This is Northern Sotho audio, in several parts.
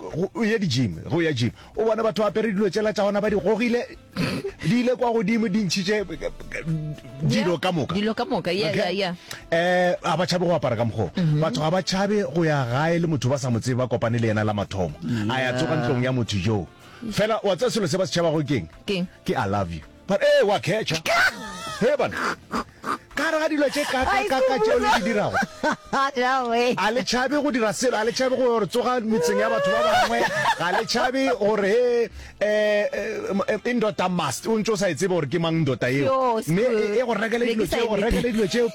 Go ya di-gym, go ya gym. O bona batho ba apere dilo tšela tša gona ba di gogile, di ile kwa godimo di ntšhitše dilo ka moka. Dilo ka moka, yeah, yeah, yeah. Eh, ga ba tšhabe go apara ka mokgoo. Mhm. Batho ga ba tšhabe go ya gae le motho ba sa mo tsebe ba kopane le yena la mathomo. A ya tsoga ntlong ya motho joo. Fela wa tseba selo se ba se tšhabago keng? Keng? Ke I love you. Ba re, Ee, wa khetšha. Hee bana, ka gare ga dilo tše kakakaka tšeo le di dirago, a le tšhabe go dira selo, a le tšhabe go re tsoga metseng ya batho ba bangwe, ga le tšhabe gore he um e e ndota must o ntse o sa e tsebe gore ke mang ndota eo, mme e go rekele dilo tseo, go rekele dilo tseo,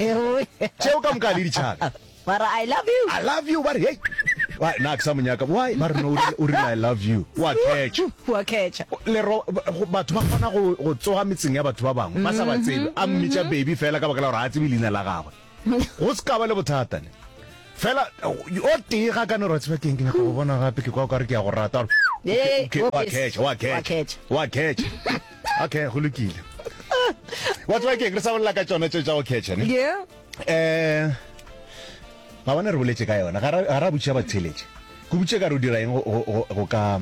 tseo ka moka ga le di tšhabe. Ba re, I love you. I love you, ba re, Hei, why, na ke sa mo nyaka, why, ba re, No, o rile, o rile, I love you, o a catcha. O a catcha. Lero, batho ba kgona go, go tsoga metseng ya batho ba bangwe, ba sa ba tsebe, a mmitša baby fela ka baka la gore ga a tsebe leina la gagwe. Go se ka ba le bothata ne. Fela, o tee ga a ka no re, Wa tseba ke'ng, ke nyaka go bona gape, ke kwa o ka re ke a go rata. Ba re, Hei, o a catcha, o a catcha, o a catcha. Okay, go lokile. Wa tseba ke'ng, re sa bolela ka tšona tše tša go catcha ne. Yeah. eh ga bana re boletse ka yona ga ra botšiša batheletše go botše ka re o dira eng go ka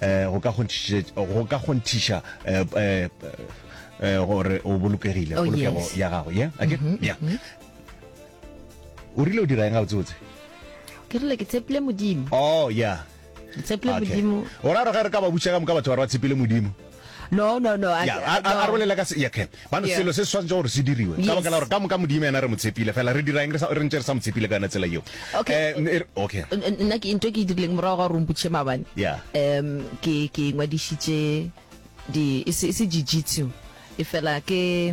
eh, go ka kgonthiša eh, eh, gore o bolokegile oh, polokego ya gago ye ake mm-hmm, ya mm-hmm. o rile o dira eng ga botsebotse ke rile ke tshepile modimo oh ya tshepile Okay. modimo o ra gore ge re ka ba butša ka moka batho ba re ba tshepile modimo no no no I- Ya, a- a- no. a re bolela ka se- ya, okay. Bano, Yeah. selo se se tshwanetse gore se diriwe ka Yes. baka la gore ka moka modimo yena re mo tshepile fela re dira eng re sa- re ntse re sa mo tshepile ka yona tsela eo Okay. Eh, n- e re- okay N- n- nna ke into e ke e dirileng morago ga gore omputšhe mabane Yeah. um ke ke ngwadišitše di e se e se jiu-jitsu e fela ke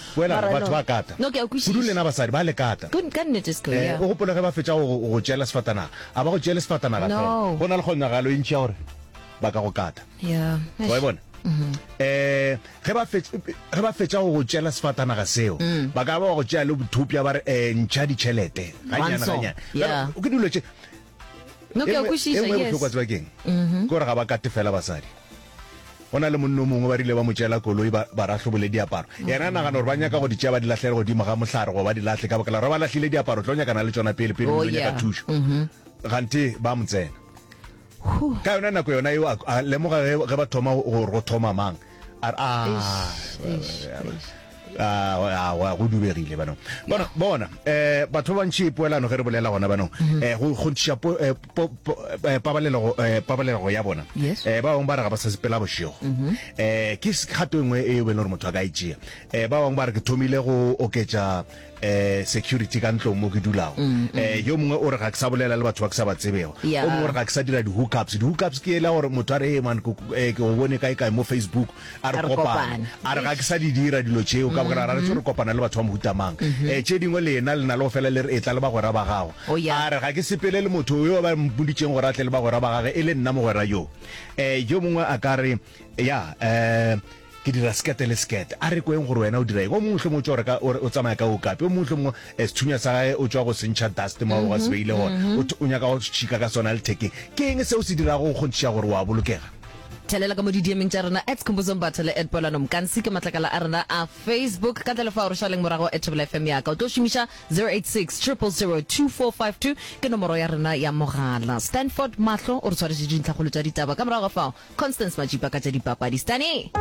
Boela re batho ba kata, kudu lena basadi ba le kata. O gopole ge ba fetša go go tšeela sefatanaga, a ba go tšeele sefatanaga fela. Go na le kgonagalo e ntši ya gore ba ka go kata. Wa e bona? Ge ba fetša, ge ba fetša go go tšeela sefatanaga seo, ba ka ba ba go tšea le bothopša ba re, Ntšha ditšhelete, gannyane, gannyane. Ke dilo tše, No, ke a kwešiša, engwe e bohlokwa yes. tseba keng ke gore ga ba kate fela basadi go na le monno mongwe ba rile ba mo tšela koloi ba ba rahlobole diaparo yena a nagana gore ba nyaka go di tšea ba di lahlele godimo ga mohlare go ba di lahle ka baka la gore ba ba lahlile diaparo tlo nyakana le tsona pele pele Oh, o tlo nyaka yeah. thušo gante ba mo tsena Huh. ka yona nako yona eo a- a lemoga ge ge ba thoma go- gore go thoma mang a go dubegile banong bona bona eh batho ba bantši poelano ge re bolela gona banong mm-hmm. eh go kgontšiša eh, eh, pabalelo eh, pabalelo ya bona eh ba bangwe ba re ga ba sa sepela bošego mm-hmm. eh ke kgato engwe e be le gore motho a ka e tšea eh ba bangwe ba re ke thomile go oketša eh security ka ntlong mo ke dulago mm, mm. eh yo mongwe o re ga ke sa bolela le batho ba ke sa ba tsebego yeah. o mongwe o re ga ke sa dira di-hookups di-hookups ke ela gore motho a re man eh, ke o bone kae kae mo facebook a re kopane a re ga ke sa di dira dilo tšeo ka bogera ra re tse re mm-hmm. kopana le batho ba mohutamang um mm-hmm. eh, tše dingwe lena le na le go fela le re e tla le bagwera ba gago oh, a re ga ke sepele le motho yo ba mpoditseng gore a tle le bagwera ba gage e le nna mogwera yo um yo mongwe a ka re ya um Ke dira sekete le sekete. A re kweng gore wena o dira eng. O mongwe mohlomongwe o tšwa o reka, o re o tsamaya ka okapi. O mongwe mohlomongwe sethunya sa gage o tšwa go se ntšha dust mo a bego a se beile gona. O o nyaka go šika ka sona lethekeng. Ke eng se o se dirago go kgonthiša gore o a bolokega? Thelela ka mo didiemeng tša rena at Khumbuzong Batho le at Poelano Mkansi ke matlakala a rena a Facebook. Ka ntle le fao re šaleng morago at Thobela FM ya ka. O tlo šomiša 0860002452 ke nomoro ya rena ya mogala. Stanford Mahlo o re tshwaretše dintlhakgolo tša ditaba ka morago ga fao Constance Majipa ka tša dipapadi. Stani!